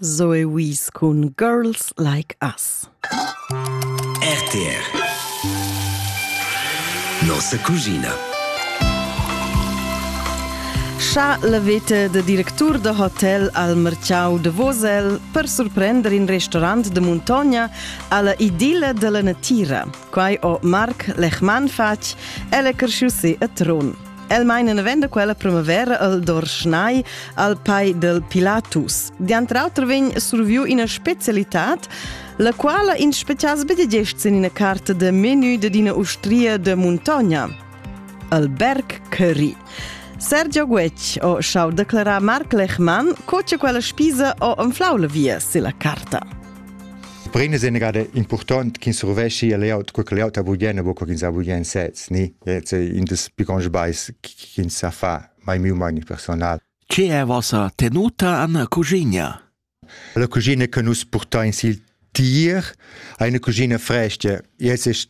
Zoe Wies cun Girls Like Us. RTR Nossa cugina Cha la veta da directur da hotel al merciau de Vosel per surprender in restaurant de Montagna alla idilla della natira. Quai ho Marc Lechmann fatg, el è cresciusi a Tron. El meina venda quella primavera al Dorschnai al pai del Pilatus. Diantr auter vegn surviu ina specialitad, la quala in specias bedegest in ina carta de menu de dina ustria de Montogna, al Berg Curry. Sergio Guec o schau declarar Marc Lechmann co che quella spisa o anflau la via se la carta. Per ina sia gada impurtont ch'ins survesci a layout, quei che layout ha bugen, bu ch'ins ha bugen sez, ni? It's in des piccons sbais ch'ins sa fa, mai miu mai ni personal. Che è vossa tenuta an cuginia? La cuginia che nus portain sil tier, eine Cucina fresca. Jetzt ist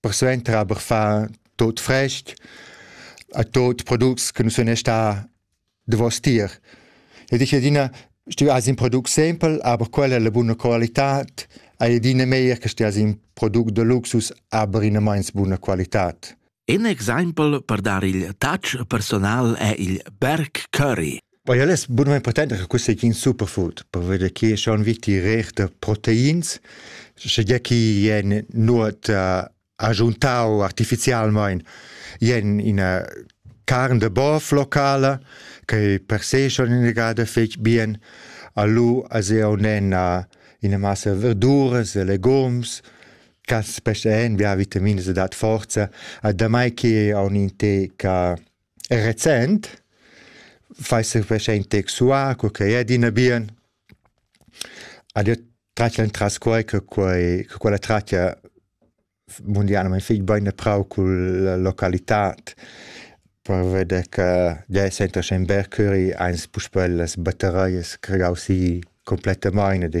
persuenter aber fa tot frest a tot products che non sono sta davos tier. E dice adina, stu as in product simpel, aber quella è la buona qualità, hai adina meglio che stia in product de luxus, aber in meins buona qualità. In exempel per dar il touch personal è il Berg Curry. Poi al es bunamain potent che quist ei in superfood per veder chi schon viti reich da proteins, sche gia chi ien nuot uh, agiuntau artificialmaing ien ina carn de bov locala che per se schon inegada fetg bien. Alu as eu nen uh, ina massa verduras e legums, ca specie en via vitaminas e dat forza, a damai che on in te ca Recent fais ün preschaint sexual co ch'ei è adina bien. Al jeu tratg entras quai che quai che quella tratga mundialmaing fich bain e prau culla localitad per veder che tgei senta sche ün bel curri, ans puspè las batteraias creau si cumplettamaing ed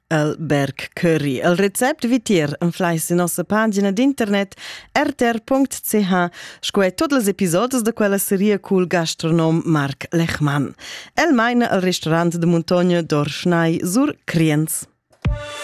Alberg Curry. El recept vitier enflais in nossa pagina d'internet rtr.ch sco e tots les episodes de quella seria cul gastronom Marc Lechmann. El maina al restaurant de Muntogna d'Orschnai sur Criens.